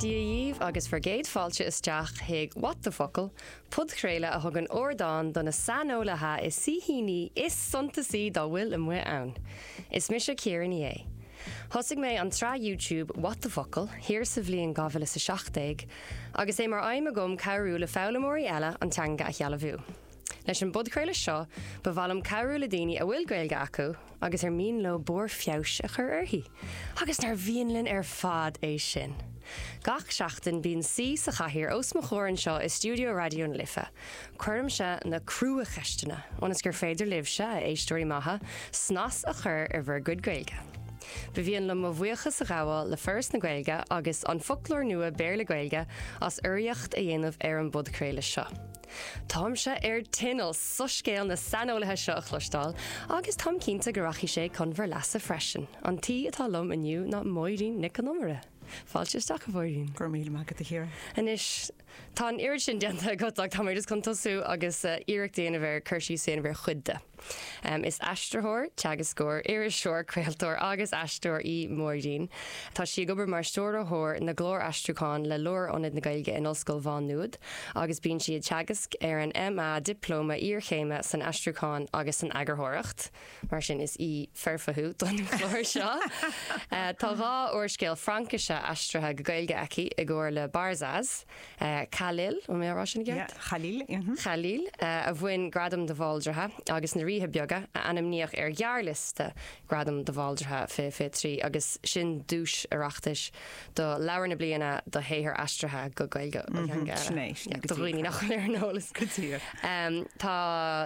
Dia dhíbh agus bhur gcéad fáilte isteach chuig What the Focal! podchraoladh a thugann ardán do na saineolaithe is saoithíní is suntasaí dá bhfuil amuigh ann. Is mise Ciara Ní É. Thosaigh mé an tsraith YouTube What the Focal? thiar sa bhliain 2017, agus é mar aidhm agam cabhrú le foghlaimeoirí eile an teanga a shealbhú. Leis an bpodchraoladh seo, ba mhaith liom cabhrú le daoine a bhfuil Gaeilge acu agus ar mian leo barr feabhais a chur uirthi, agus nár mhian linn ar fad é sin! Gach seachtain, bíonn saoi sa chathaoir os mo chomhair anseo i stiúideo Raidió na Life. Cuirimse na cruacheisteanna, ionas gur féidir libhse, a éisteoirí maithe, snas a chur ar bhur gcuid Gaeilge. Ba mhian liom mo bhuíochas a ghabháil le Foras na Gaeilge agus An Foclóir Nua Béarla-Gaeilge as urraíocht a dhéanamh ar an bpodchraoladh seo. Táimse ar tinneall soiscéal na saineolaithe seo a chloisteáil agus táim cinnte go rachaidh sé chun bhur leasa freisin. An t-aoi atá liom inniu ná Máirín Nic Con Iomaire. Fáilte isteach, a Mháirín. Go raibh míle maith agat, a Chiara. Anois, tá an oiread sin déanta agat ach tá mé just chun tosú agus iarracht a dhéanamh ar cur síos a dhéanamh ar chuid de. Is aistritheoir, teagascóir, iriseoir, craoltóir agus aisteoir í Máirín. Tá sí ag obair mar Stiúrthóir na gClár Aistriúcháin le Lárionad na Gaeilge in Ollscoil Mhá Nuad agus bíonn sí ag teagasc ar an MA, Dioplóma Iarchéime san Aistriúchán agus san Eagarthóireacht, mar sin is aoi foirfe thú don chlár seo! Tá dhá úrscéal Fraincise aistrithe go Gaeilge aici i gcomhar le Barzaz. Khalil, an bhfuil mé ag rá sin i gceart? Khalil Khalil a bhain Gradam de Bhaldraithe agus na Ríthe Beaga a ainmníodh ar ghearrliosta Gradam de Bhaldraithe 2023 agus sin duais Oireachtais do Leabhar na Bliana do shaothar aistrithe go Gaeilge ó theanga eile, do dhaoine nach bhfuil ar an eolas. Tá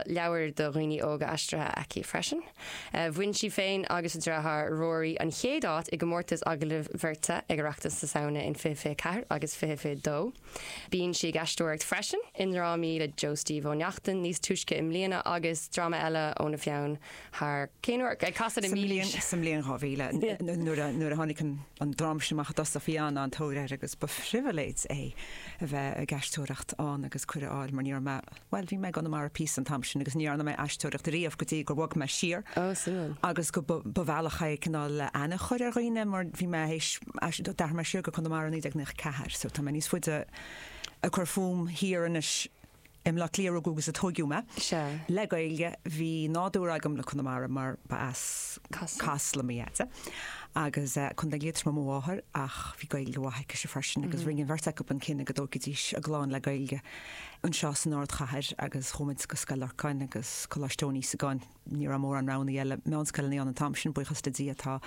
leabhair do dhaoine óga aistrithe aici freisin. Bhain sí féin agus a dreatháir Ruairí an chéad áit i gcomórtas agallaimh bheirte ag Oireachtas na Samhna in fiche fiche ceathair agus fiche fiche dó. Bíonn sí ag aisteoireacht freisin i ndrámaí le Joe Steve Ó Neachtain níos túisce i mbliana agus dráma eile óna pheann thiar, cén uair? Ag casadh na Mílaoise. Sa mbliain 2000 nuair a tháinig an dráma sin amach i dtosach bhí an-an-tóir air agus ba phribhléid é a bheith ag aisteoireacht ann agus cuireadh a fháil mar ní raibh Bhuel, bhí mé i gConamara píosa an t-am sin agus ní dhearna mé aisteoireacht ariamh go dtí gur bhog mé siar. Oh, suimiúil. Agus go, ba bhealach é cineál aithne a chur ar dhaoine mar bhí mé théis, d'athraigh mé siar go Conamara i 1994 so tá mé níos faide ag cur fúm thiar anois i mBleá Cliath a rugadh agus a tóigeadh mé. Sea. Le Gaeilge, bhí nádúr agam le Conamara mar ba as Casla mo dhaide agus Contae Liatroma mo mháthair ach bhí Gaeilge mhaith aicise freisin agus rinne an bheirt acu an cinneadh go dtógfaidís a gclann le Gaeilge. anseo san ardchathair agus chuaigh muid go Scoil Lorcáin agus Coláiste Eoin Íosagáin. Ní raibh mórán roghannaí eile meánscoileanna ann an t-am sin, buíochas le Dia tá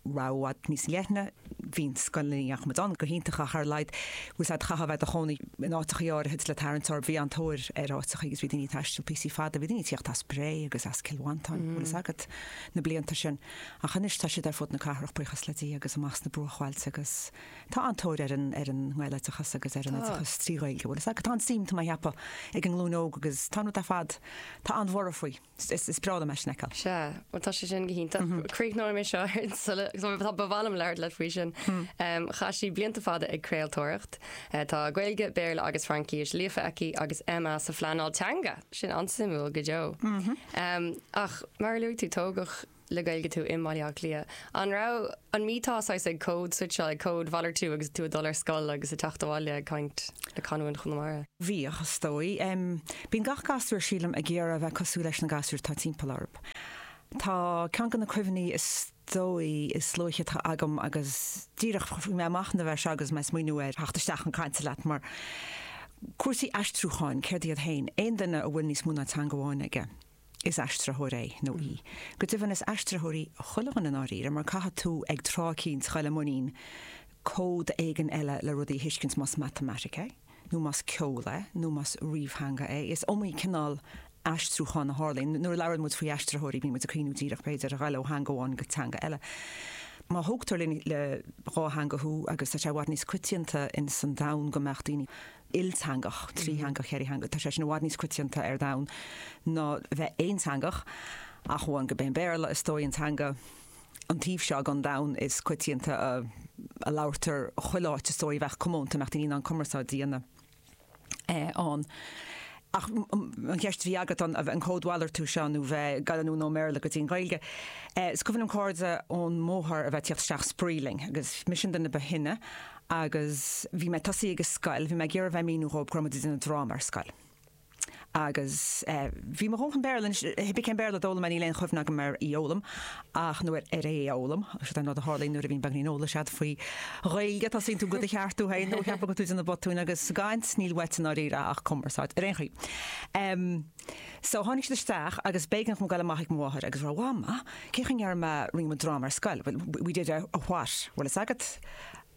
rogha i bhfad níos leithne, bhí na scoileanna a ndeachaigh muid ann go hiontach ach ar a laghad bhí sé, chaithfeá a bheith i do chónaí in áiteachaí áirithe agus le tarraingt, ó bhí an-tóir ar áiteachaí agus bhí daoine ag taisteal píosaí fada, bhí daoine ag tíocht as Bré agus as Cill Mhantáin, bhfuil fhios agat, na blianta sin. Ach anois tá siad ar fud na cathrach, buíochas le Dia agus amach sna bruachbhailte agus. Tá an-tóir ar an ar an nGaeloideachas agus ar an Tá. oideachas trí Ghaeilge bhuel is tá an-suim, tá mé a' cheapadh, ag an nglúin óg agus tá rud ar fad tá an-bhorradh faoi. Is is is breá liom é sin a fheiceáil. Sea, bhuel tá sé sin go hiontach. Mm-hmm. Críochnóidh mé seo ar an sula agus ba mhaith liom labhairt leat faoi sin. Hmm. Em, Chaith sí blianta fada ag craoltóireacht. Eh, Tá Gaeilge, Béarla agus Fraincis líofa aici agus MA sa phleanáil teanga. Sin an-suimiúil go deo. Mm-hmm. Em, Ach mar a luaigh tú tógadh le Gaeilge tú i mBaile Átha Cliath, an raibh, an mbíteá saghas ag códswitcheáil, ag códmhalartú agus tú ag dul ar scoil agus ag teacht abhaile ag caint le canúint Chonamara? Bhíodh, is dóigh. Em, bíonn gach gasúr, sílim, ag iarraidh a bheith cosúil leis na gasúir atá timpeall orthu. Tá ceann de na cuimhní is dóigh is luaithe atá agam agus díreach chuaigh mé ag machnamh air seo agus mé ag smaoiniú ar theacht isteach chun cainte leat mar, cúrsaí aistriúcháin, céard iad féin, aon duine a bhfuil níos mó ná teanga amháin aige? is aistritheoir é nó í. Go deimhin, is aistritheoirí chuile dhuine i ndáiríre, mar caithfidh tú ag tráth eicínt dul i muinín cód éigin eile le rudaí a thuiscint, más matamaitic é, nó más ceol é, nó más ríomhtheanga é. Is iomaí cineál aistriúcháin a tharlaíonn. Nuair a labhraíonn muid faoi aistritheoirí, bíonn muid ag cuimhniú díreach, b'fhéidir, ar dhul ó theanga amháin go teanga eile. Má thógtar le dhá theanga thú, agus tá sé i bhfad níos coitianta in san domhan go mbeadh daoine. ilteangach, trítheangach, ceithretheangach, tá sé sin i bhfad níos coitianta ar domhan ná bheith aonteangach, ach amháin gurb é an Béarla, is dóigh, an teanga an taobh seo den domhan is coitianta a labhraítear chuile áit, is dóigh, a bheadh comónta, a mbeadh daoine in ann cumarsáid a dhéanamh ann. Ach an cheist a bhí agat an an códmhalartú seo nó bheith ag goil anonn ón mBéarla go dtí an Ghaeilge. Is cuimhin liom cairde ón mbóthar a bheith ag teacht isteach ag spraoi linn agus mise an duine ba shine agus bhí mé ag tosaí ag an scoil, bhí mé ag iarraidh bheith ag míniú dhóibh go raibh muid ag déanamh dráma ar scoil. Agus bhí mo dhóthain Béarla anois, cibé cén Béarla a d'fhoghlaim mé níl aon chuimhne agam ar í fhoghlaim ach nó ar é a fhoghlaim. Sin an rud a tharlaíonn nuair a bhíonn beagáinín eolais agat faoi Ghaeilge, tosaíonn tú do do cheartú féin nó ag baint geit asat de na botúin agus sa gcaint níl uait i ndáiríre ach cumarsáid ar aon chaoi. Em, so tháinig siad isteach agus b'éigean dhom goil amach ag mo mháthair agus rá, Mham, cé chaoi a ndéarfaidh mé, rinne muid dráma ar scoil, bhuel, we did a, a what? Bhfuil fhios agat?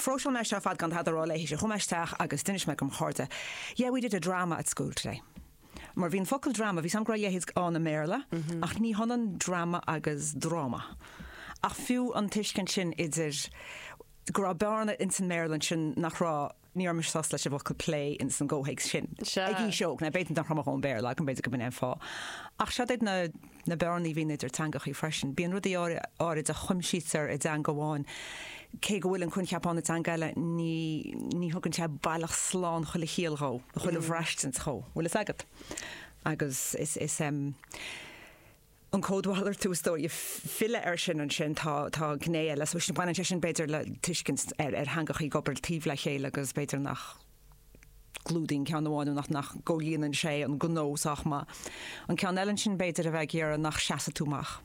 Phróiseáil mé é seo ar fad gan tada a rá léi. Chuaigh mé isteach agus d'inis mé go mo chairde, Yeah, we did a drama at school today. Mar bhí an focal drama, bhí fhios agam go raibh a leithéid ann i mBéarla, ach ní hionann drama agus dráma. Ach fiú an tuiscint sin idir go raibh bearna ins an mBéarla ansin nach raibh, ní raibh mise sásta leis an bhfocal play ins an gcomhthéacs sin. Ag aois óg, now b'fhéidir nach raibh mo dhóthain Béarla agam, b'fhéidir go b'in é an fáth. Ach siod iad na. na bearnaí a bhíonn idir teangacha freisin. Bíonn rudaí áirid a chuimsítear i dteanga amháin, cé go bhfuil an coincheap ann i dteanga eile, ní thugann sé baileach slán chuile chiall dhó, nó chuile bhraistint dhó, bhfuil fhios agat. Agus is an códmhalartú is dóigh filleadh air sin ansin, tá gné eile, baineann sé sin b'fhéidir le tuiscint ar theangacha ag obair taobh le chéile agus b'fhéidir nach. gclúdaíonn ceann amháin nó nach gcomhlíonann sé an gnó sách maith an ceann eile, ansin b'fhéidir a bheith ag iarraidh nach seasfaidh tú amach.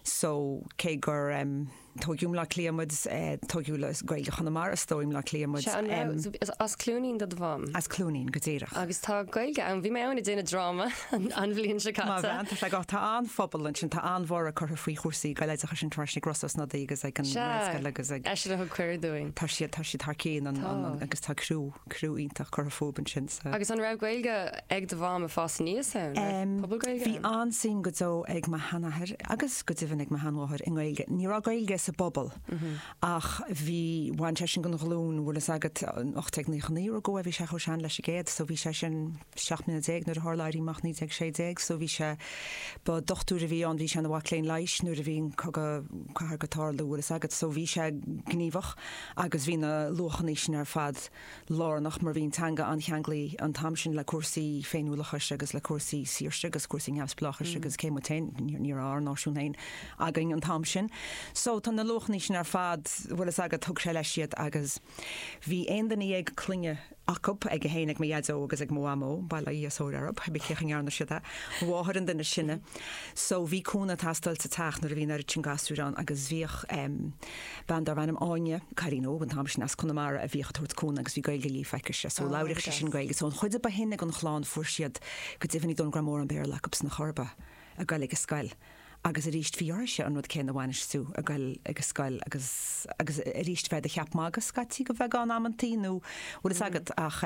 So, cé gur, em, tóigeadh i mBleá Cliath muid, eh, tóigeadh le Gaeilge Chonamara, is dóigh, i mBleá Cliath muid. Sea, an raibh, em, so, bhí, as Cluainín do do mham? As Cluainín, go díreach. Agus tá Gaeilge ann, bhí mé ann ag déanamh dráma. an bhliain seo caite. Maith an bhean, tá sé go, tá an-phobal ansin, tá an-bhorradh curtha faoi chúrsaí Gaeloideachais ann anois ag Rossa Ó Snodaigh agus ag an nGaelscoil agus ag. Eisean a thug cuireadh dúinn. Tá siad, tá siad thar cionn an, an, an, agus tá criú, criú iontach curtha fúthu ansin sa. Agus an raibh Gaeilge ag do mham ag fás aníos ann? Raibh pobal Gaeilge ann? Bhí an-suim go deo ag mo sheanathair agus go deimhin ag mo sheanmháthair i nGaeilge. Ní raibh Gaeilge sa bpobal ach bhí, bhain sé sin den ghlúin a bhfuil fhios agat, 1899 a rugadh é, bhí sé chomh sean leis an gcéad so bhí sé sin. 17 mbliana nuair a tharla Éirí Amach 1916 so bhí sé, ba dochtúir a bhí ann, bhí sé ina mhac léinn leighis nuair a bhí an cogadh cathartha ag tarlú, bhfuil fhios agat, so bhí sé gníomhach agus bhí na luachanna sin ar fad lárnach mar bhí an teanga an-cheanglaithe an t-am sin le cúrsaí féiniúlachais agus le cúrsaí saoirse agus cúrsaí neamhspleáchais agus cé muid féin, ní raibh ár náisiún féin againn an t-am sin so tá na luachanna sin ar fad, bhfuil fhios agat, thug sé leis iad agus. Bhí aon duine dhéag clainne acu, ag 1 ag mo dhaideo agus ag mo mhamó, bail ó Dhia is ó Mhuire orthu, cibé cén chaoi a ndearna siad é, mo mháthair an duine is sine. So bhí cúnamh ag teastáil sa teach nuair a bhí an oiread sin gasúir ann agus bhíodh em bean darbh ainm Áine, cailín óg an t-am sin as Conamara a bhíodh ag tabhairt cúnamh agus bhí Gaeilge líofa aici-se so Oh labhraíodh sí sin yes. Gaeilge. So an chuid a ba shine den chlann fuair siad, go deimhin ní dóigh liom go raibh mórán Béarla acu sin ar chor ar bith ag goil ag an scoil. Agus arís, bhí uirthise an rud céanna a bhainistiú ag goil ag a scoil agus, agus arís, bheith i do cheap magaidh scaití go bheagán amantaí nó bhfuil fhios agat ach,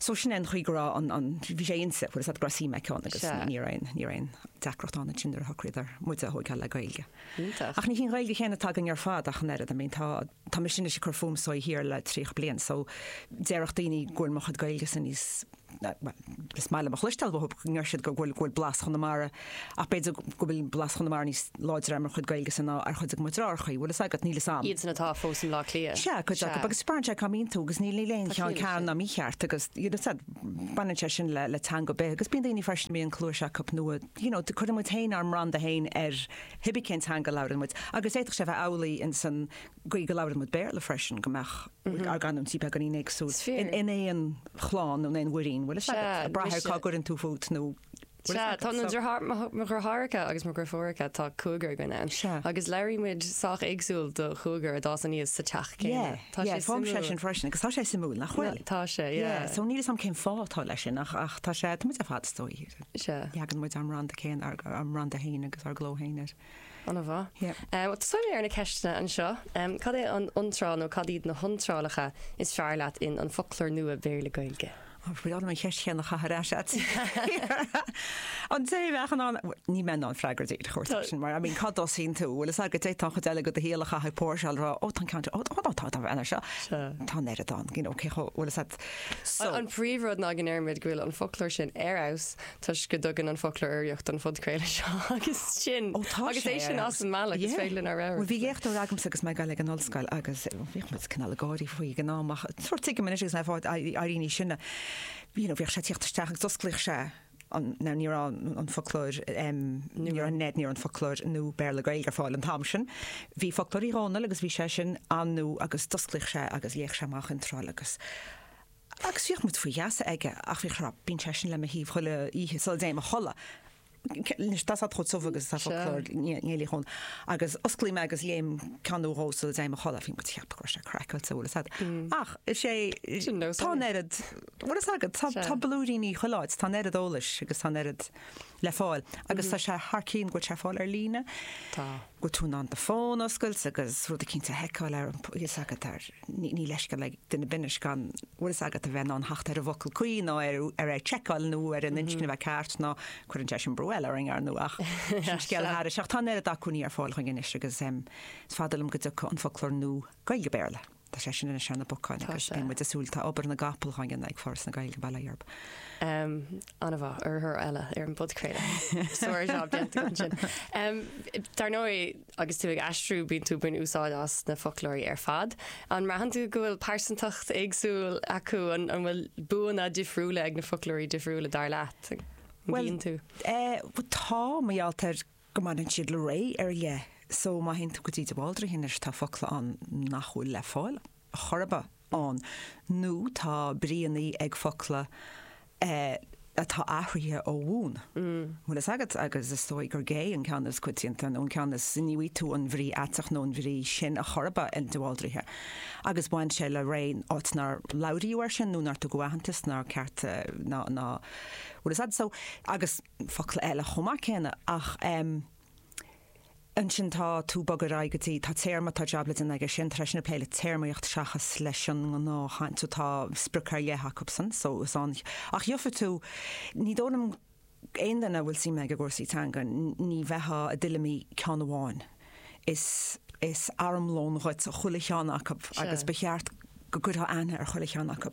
so sin é an chaoi go raibh an, an, bhí sé inti, bhfuil fhios agat go raibh suim aici ann agus ní raibh aon, ní raibh aon deacracht ann ansin nuair a shocraíodar muide a thóigeáil le Gaeilge. Iontach. Ach ní hí an Ghaeilge chéanna atá againn ar fad ach an oiread, I mean, tá, tá mise anois ag cur fúm anseo thiar le tríocha bliain so déarfadh daoine go bhfuil mo chuid Gaeilge-sa níos, Is maith liom a chloisteáil, nuair a deir siad go bhfuil blas Chonamara ach b'fhéidir go bhfuil blas Chonamara níos láidre ar mo chuid Gaeilge-sa ná ar chuid de mo dhriotháireachaí. Bhfuil fhios agat, níl fhios a'm. Iadsan atá fós i mBleá Cliath. Sea, cuid acu. Agus spreagann sé cá mbíonn tú agus níl níl aon cheann ceart ná mícheart agus you know said baineann sé sin le le teanga ar bith agus bíonn daoine freisin a mbíonn cluas acu nó you know cuireann muid féin ár mbranda féin ar pé ar bith cén teanga a labhrann muid agus d'fhéadfadh sé a bheith amhlaidh ins an gcaoi go labhraímid Béarla freisin, go mbeadh ár gcanúintí beagáinín éagsúil in aon chlann nó in aon mhuirín, bhuel is ea, a Brathair, cá gcuireann tú fút nó. Sea, tá na mo dheartháireacha agus mo dheirfiúracha, tá cúigear againn ann. Sea. Agus labhraímid sách éagsúil do chúigear a d'fhás aníos sa teach céanna. Tá sé suimiúil. Sea, fágfaidh sé sin freisin agus tá sé suimiúil, nach bhfuil? Tá sé, yeah. Yeah, so níl fhios agam cén fáth atá leis sin ach tá sé, tá muid ar fad, is dóigh, leagann muid ár mbranda céanna, ár mbranda féin agus ár gcló féin air. Ana mhaith. Yeah. Táimse ar na ceisteanna anseo. Cad é an iontráil nó cad iad na hiontrálacha is fearr leat in An Foclóir Nua Béarla-Gaeilge? Ó, bhfuil orm an cheist chéanna a chaitheamh ar ais agat. An té a bheadh in ann, níl mé in ann freagra a thabhairt air sin, mar I mean, cá dtosaíonn tú? Bhfuil fhios agat, d'fhéadfá an chuid eile de do shaol a chaitheamh ag póirseáil a rá, ó, tá an ceann seo, ó, ó, tá, tá, tá, seo, tá an oiread ann, you know, cé chomh, bhfuil fhios a'd. So. An príomhrud ná go ndeirimid go bhfuil an foclóir sin ar fheabhas toisc go dtugann an foclóir urraíocht don phodchraoladh seo agus sin. Ó tá sé ar. Agus é sin as an mbealach, is féidir linn ár rogha. Bhuel bhí léachtóir agamsa agus mé ag gabháil ag an ollscoil agus bhíodh muid cineál ag gáirí faoi ag an am ach nuair tuigim anois agus mé ag fáil níos sine sin you know bhíodh sé ag teacht isteach agus d'osclaíodh sé an now ní raibh an foclóir ní raibh an ní raibh an foclóir nua Béarla Gaeilge ar fáil an t-am sin. Bhí foclóir Uí Dhónaill agus bhí sé sin an-nua agus d'osclaíodh sé agus léadh sé amach intráil agus Agus bhíodh muid faoi gheasa aige, ach bhíodh sé, bíonn seisean le mo thaobh chuile oíche sula dtéim a chodladh. Anois, tá sé chomh tiubh agus atá foclóir Néill Uí Dhónaill, agus osclaím é agus léim ceann nó dhó sula dtéim a chodladh, bhí muid ag ceapadh go raibh sé craicáilte, bhfuil fhios a'd. Mm. Ach, is é, tá an oiread, bhfuil fhios agat, tá blúiríní chuile áit, tá an oiread eolais agus tá an oiread, le fáil agus tá sé thar cionn go bhfuil sé ar fáil ar líne. Tá. go bhfuil tú in ann do fón a oscailt agus rud éicint a sheiceáil ar bhfuil fhios agat ar, níl leithscéal ag duine ar bith anois gan bhfuil fhios agat a bheith in ann theacht ar an bhfocal cuí nó ar ar ar seiceáil nó ar an inscne a bheith ceart nó cuireann sé sin brú eile orainn ar ndóigh ach sin scéal thairis ach tá an oiread acmhainní ar fáil dúinn anois agus is fada liom go dtiocfaidh an foclóir nua Gaeilge-Béarla. Tá sé sin idir dhá cheann na mbacán agus bíonn muid ag súil, tá obair na gcapall á dhéanamh ag Foras na Gaeilge, bail ó Dhia orthu. An-mhaith. Urraitheoir eile ar an bpodchraoladh. Sár-job déanta agam ansin. Dar ndóigh, agus tú ag aistriú bíonn tú ag baint úsáid as na foclóirí ar fad. An mbraitheann tú go bhfuil pearsantacht éagsúil acu, an bhfuil buanna difriúla ag na foclóirí difriúla dar leat? An mbíonn tú? Bhuel, tá, mar gheall ar go mbaineann siad le ré ar leith so má théann tú go dtí de Bhaldraithe anois tá focla ann nach bhfuil le fáil chor ar bith ann nó tá bríonna ag focla atá athraithe ó bhun. bhfuil fhios agat agus is dóigh gurb é an ceann is coitianta nó an ceann is ní bhfaighidh tú an bhrí aiteach nó an bhrí sin chor ar bith in de Bhaldraithe agus bhain sé le ré áit nár labhraíodh air sin nó nár tugadh aitheantas ná cearta ná bhfuil fhios agat so agus focla eile chomh maith céanna ach em ansin tá tú ag bogadh ar aghaidh go dtí tá téarma tá jab le déanamh aige sin tá sé sin ag plé le téarmaíocht seachas leis an ngnáthchaint so tá sprioc ar leith acu sin so is ea ach gheofá tú ní dóigh liom aon duine a bhfuil suim aige i gcúrsaí teanga ní bheithá i dtuilleamaí ceann amháin is is armlón dhuit chuile cheann acu agus ba cheart go gcuirfeá aithne ar chuile cheann acu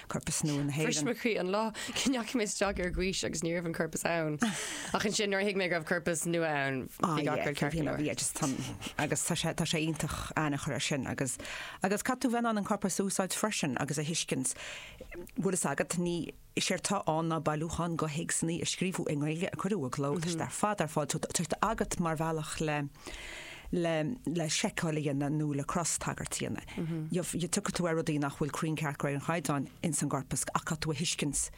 corpas nua na hÉireann. Bhris mo chroí an lá go ndeachaigh mé isteach ar Gaois agus ní raibh an corpas ann. Ach ansin, nuair a thuig mé go raibh corpas nua ann, bhí gach rud ceart go leor. Bhí, agus tá, agus tá sé, tá sé iontach aithne a chur air sin. Agus, agus caithfidh tú bheith in ann an corpas a úsáid freisin agus a thuiscint bhfuil fhios agat, ní, séard tá ann ná bailiúchán go théacsanna a scríobhadh i nGaeilge a cuireadh i gcló, tá siad ar fad ar fáil, tá siad agat mar bhealach le, le le seiceáil a dhéanamh nó le cros-tagairt a dhéanamh. Yeah yeah tiocfaidh tú ar rudaí nach bhfuil cruinn ceart go réir an chaighdeáin ins an gcorpas ach caithfidh tú a thuiscint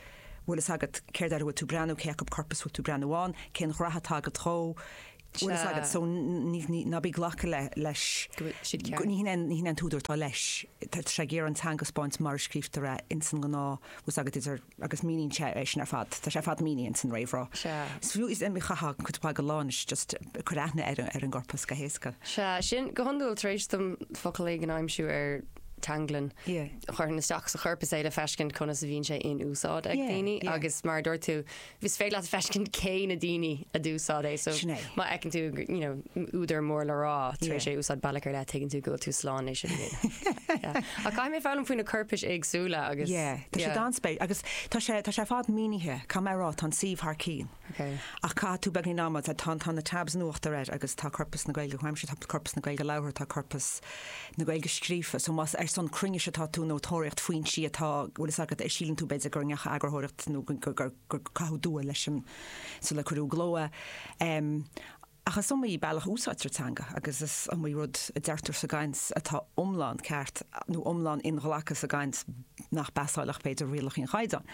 bhfuil fhios agat céard ar a bhfuil tú breathnú, cé acu corpas bhfuil tú breathnú ann, cén ghnaithe atá agat dhó, bhfuil fhios agat so ní ní ná bí glacadh le leis go bhfuil siad ceart. go ní hionann ní hionann an t-údar atá leis, tá sé ag iarraidh an teanga a spáint mar a scríobhtar é ins an ngnáth bhfuil fhios agat idir agus míníonn sé é sin ar fad, tá sé ar fad mínithe in san réamhrá. Sea. Is fiú, is iomaí, chaithfeá cuid mhaith go lá anois just cur aithne ar an, ar an gcorpas go héasca. Sea, sin, go hiondúil tar éis dom focal éigin a aimsiú ar Teanglann, Yeah. chuirfinn isteach sa chorpas é le feiscint conas a bhíonn sé in úsáid ag Yeah, daoine yeah. agus mar a dúirt tú, is féidir leat feiscint cé na daoine a d'úsáid é so Sin é. má fheiceann tú, you know, údar mór le rá tar éis é úsáid bealach ar leith, tuigeann tú go bhfuil tú slán le é sin a dhéanamh. Ach caithfidh mé foghlaim faoi na coirpis éagsúla agus. Ie, tá sé an-spéisiúil agus tá sé tá sé ar fad mínithe, caithfidh mé a rá, tá an suíomh thar cionn. Ok. Ach caithfidh tú beagáinín ama, tá tá tá na tabs in uachtar air agus tá corpas na Gaeilge comhaimseartha, tá corpas na Gaeilge labhartha, tá corpas na Gaeilge scríofa, so más ar son cruinnis atá tú nó tóraíocht foinsí atá bhfuil fhios agat, síleann tú b'fhéidir gur dearnadh eagarthóireacht nó go go gur caitheadh dua leis sula cuireadh i gcló é. Ach is iomaí bealach a úsáidtear teanga agus is iomaí rud a deirtear sa gcaint atá iomlán ceart nó iomlán inghlactha sa gcaint nach bpasáilfeadh, b'fhéidir, rialacha an Chaighdeáin.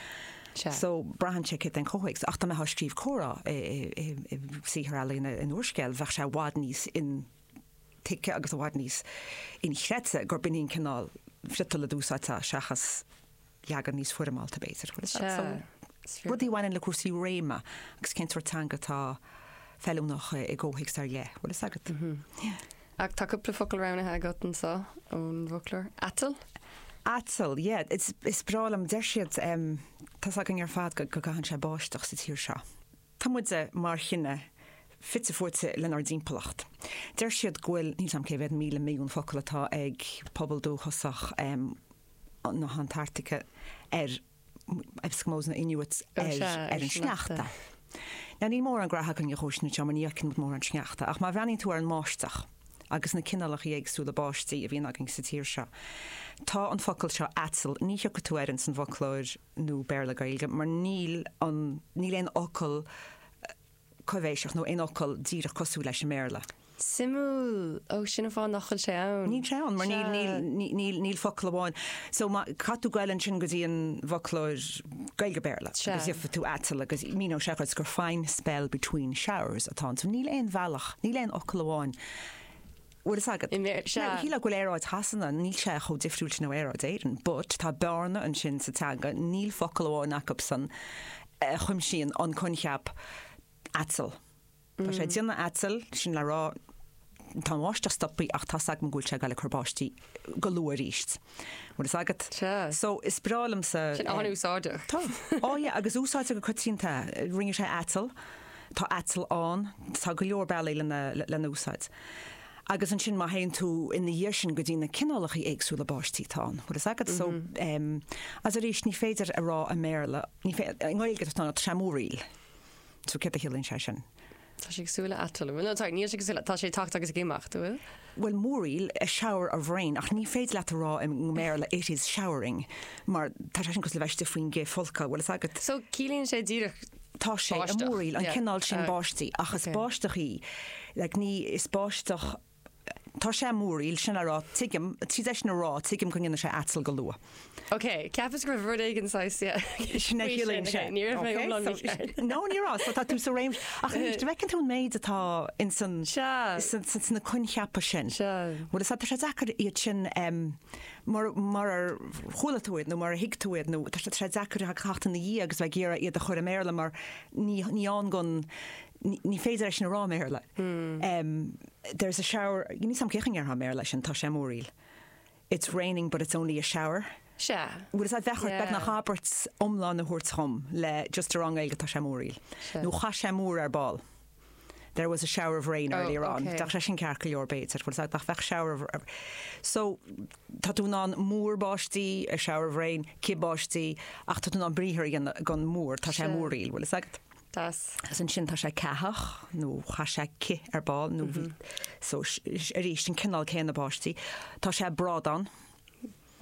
So, braitheann sé céard é an comhthéacs. Ach dá mbeifeá ag scríobh comhrá i saothar ealaíne, in úrscéal, bheadh sé i bhfad níos intuigthe agus i bhfad níos inchreidte gurb in é an cineál friotail a d'úsáidfeá seachas, leagan níos foirmeálta b'fhéidir. Rudaí a bhaineann le cúrsaí réime agus cén sort teanga atá feiliúnach i gcomhthéacs ar leith, bhfuil fhios agat. Ach tá cúpla focal roghnaithe agat anseo ón bhfoclóir. Aiteall? Aiteall, yeah, is breá liom, deir siad tá's againn ar fad go gcaitheann sé báisteach sa tír seo. Tá muid mar chine fite fuaite lenár dtimpeallacht. Deir siad go bhfuil, níl 'fhios a'm cé mhéad míle milliún focal atá ag pobal dúchasach na hAntartaice ar Eskimos nó Inuits ar an sneachta. Now níl mórán graithe againn dhó sin anseo mar ní fhaigheann muid mórán sneachta ach má bhreathnaíonn tú ar an mbáisteach agus na cineálacha éagsúla báistí a bhíonn againn sa tír seo tá an focal seo aiteall ní thiocfaidh tú air ins an bhfoclóir nua Béarla Gaeilge mar níl an níl aon fhocal coibhéiseach nó aon fhocal díreach cosúil leis i mBéarla. Suimiúil! Ó, sin an fáth nach bhfuil sé ann. Níl sé ann mar níl, Sea. níl, ní, níl, níl focal amháin. So má, caithfidh tú goil ansin go dtí an bhfoclóir Gaeilge-Béarla Sea. agus gheobhaidh tú aiteall agus míneoidh sé dhuit gur fine spell between showers atá ann. So níl aon bhealach, níl aon fhocal amháin bhfuil fhios agat. Shílfeá go bhfuil aeráid Shasana, níl sé chomh difriúil sin ó aeráid Éireann, but tá bearna ansin sa teanga, níl focal amháin acubsan a chuimsíonn an coincheap aiteall. Tá sé ag déanamh aiteall, sin le rá tá an bháisteach stoptha ach tá's agam go bhfuil sé ag dul ag cur báistí. go luath arís. Bhfuil fhios agat? Sea. So, is breá liomsa. Sin an-úsáideach. Tá. Á, yeah, agus úsáidtear go coitianta. Rinne sé aiteall. Tá aiteall ann. Tá go leor bealaí lena úsáid. Agus ansin má théann tú ina dhiaidh sin go dtí na cineálacha éagsúla báistí atá ann, bhfuil fhios agat? So, as arís, ní féidir a rá i mBéarla, ní féidir, i nGaeilge tá sé ag múraíl. So, céard a chiallaíonn sé sin? Tá sé ag súil le aiteall. No, sorry, níl sé ag súil le, tá sé ag tacht agus ag imeacht, an bhfuil? Bhuel, múraíl, a shower of rain, ach ní féidir leat a rá i mBéarla it is showering, mar tá sé sin cosúil le bheith istigh faoin gcithfholcadh a bhfuil fhios agat. So, ciallaíonn sé díreach Tá sé ag báisteach. múraíl, an Yeah. cineál sin Ah, báistí, ach is ok. báisteach í, like, ní, is báisteach, Tá sé ag múraíl sin a rá, tuigim, tríd é sin a rá, tuigim go ndéanfaidh sé aiteall go luath. Ok, cheapas go raibh rud éigin saghas faoi sin. Sin é a chiallaíonn sé. Ní raibh mé iomlán mícheart. No, ní raibh, so tá tú sa réimse. Ach anois, an bhfeiceann tú an méid atá ins an, sna coincheapa sin? Bhuel, is tá sé deacair iad sin, mar, marar chuala tú iad nó marar thuig tú iad nó tá sé deacair a theacht ina dhiaidh agus bheith ag iarraidh iad a chur i mBéarla mar ní, ní ann go, ní féidir é sin a rá i mBéarla. There is a shower, níl fhios agam cén chaoi a ndéarfá i mBéarla sin, tá sé múraíl. It's raining but it's only a shower. Sea. Bhfuil fhios agat bheadh ort, beagnach abairt iomlán a thabhairt dhom le just a rá i nGaeilge tá sé múraíl. Nó chaith sé múr ar ball. There was a shower of rain earlier on. Bheadh sé sin ceart go leor b'fhéidir. Bhuel is é nach bheadh shower of, so tá tú in ann múr báistí, a shower of rain, cith báistí, ach tá tú in ann briathar a dhéanamh den múr, tá sé múraíl, bhfuil fhios agat. Deas. Is ansin tá sé ceathach, nó chaith sé cith ar ball, nó bhí, so, arís, an cineál céanna báistí. Tá sé brádán,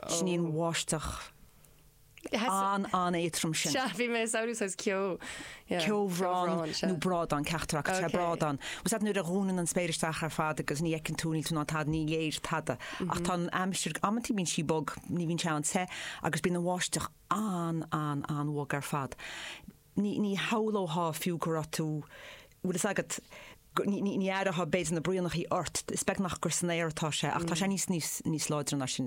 sin í an bháisteach an-an-éadrom sin. Sea, bhí mé ag samhlú saghas ceo, yeah, ceobhrán, sea. nó brádán ceachtar acu, tá sé Okay. brádán. Bhfuil fhios agat, nuair a dhúnann an spéir isteach ar fad agus ní fheiceann tú, níl tú in ann tada, ní léir tada. Ach tá an aimsir, amantaí bíonn sí bog, ní bhíonn sé an-te, agus bíonn an bháisteach an-an-an-bhog ar fad. ní shamhlófá fiú go raibh tú, bhfuil fhios agat, ní aireofá b'fhéidir na braonachaí ort, is beag nach gur san aer atá sé ach tá sé níos, níos, níos láidre ná sin.